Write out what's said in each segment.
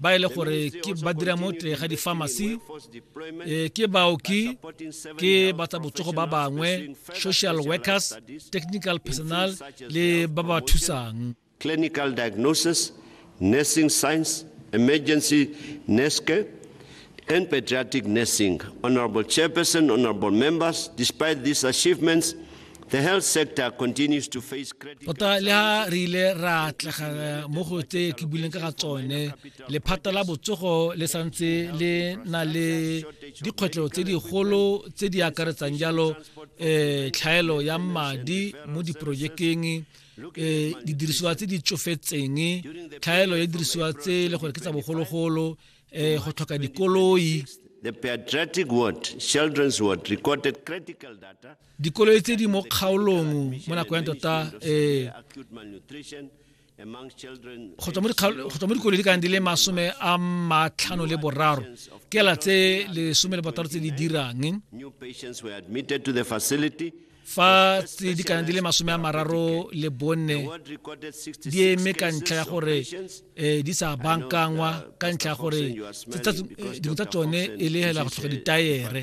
ba e le gore ke ba dira mo teng ga di-pharmacy eh, ke baoki ke ba tsa botsogo ba bangwe social workers technical personal le ba ba thusang clinical diagnosis nursing science emergency nurse care and pediatric nursing. Honorable Chairperson, honorable members, despite these achievements, tota le ha re ile ra tlega mo go tse ke buileng ka ga tsone lephata la botsogo le santse le na le dikgwetlho tse digolo tse di akaretsang jalo um tlhaelo ya madi mo diporojekeng um didirisiwa tse di tsofetseng tlhaelo ya didirisiwa tse e le gore ke tsa bogologolo um go tlhoka dikoloi dikoloi tse di mo kgaolong mo nako ya tota eh go tswa mo dikoloi di kang di le masome a matlhano le boraro kela tse lesome le botaro tse di dirang fa tse di kana di le masome a mararo le bone di eme ka ntlha ya gore um di sa bankangwa ka ntlha ya gore eh, dingwe tsa tsone e le hela go tlhoka ditaere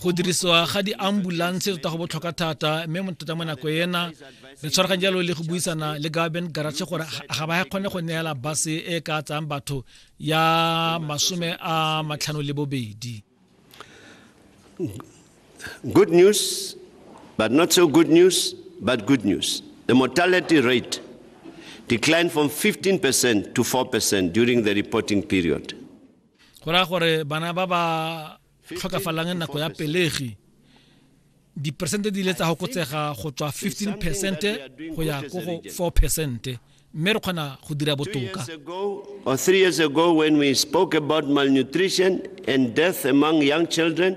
go dirisiwa ga di-ambulance tota go botlhokwa thata mme mo tota mo nako ena re tshwaraganye jalo le go buisana le gaben garache gore ga ba kgone go neela base e ka tsayang batho ya masome a matlhano le bobedi good news but not so good news but good news the mortality rate declined from 15% to 4% during the reporting period go raya gore bana ba ba tlhokafalang nako ya pelegi diperesente di ile tsa gokotsega go tswa 15 peresente go ya ko go 4 peresente mme re kgona go dira botoka or three years ago when we spoke about malnutrition and death among young children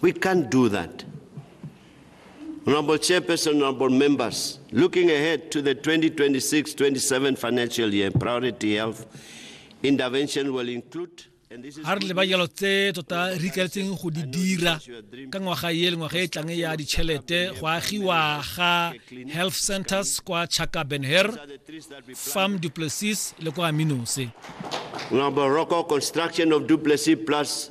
We can't do that. Honorable Chairperson, honorable members, looking ahead to the 2026-27 financial year, priority health intervention will include ga re leba jalo tse tota re ikaletseng go di dira ka ngwaga e le ngwaga e tlang ya ditšhelete go agiwa ga health centers kwa chaka benher farm duplessis le kwa minose Number Rocco construction of Duplessis Plus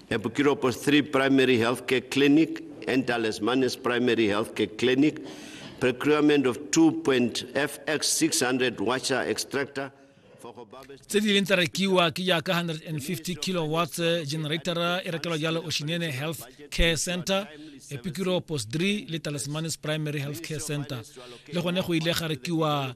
E Pukiropos 3 Primary Healthcare Clinic and Dallas Manes Primary Healthcare Clinic, procurement of 2.FX 600 washer extractor tse di leng tsa rekiwa ke jaaka 150 kilowatts eh, generatora e rekelwa jalo oshinene health care center epikiro post 3 le talismanis primary health care center le gone go ile ga rekiwa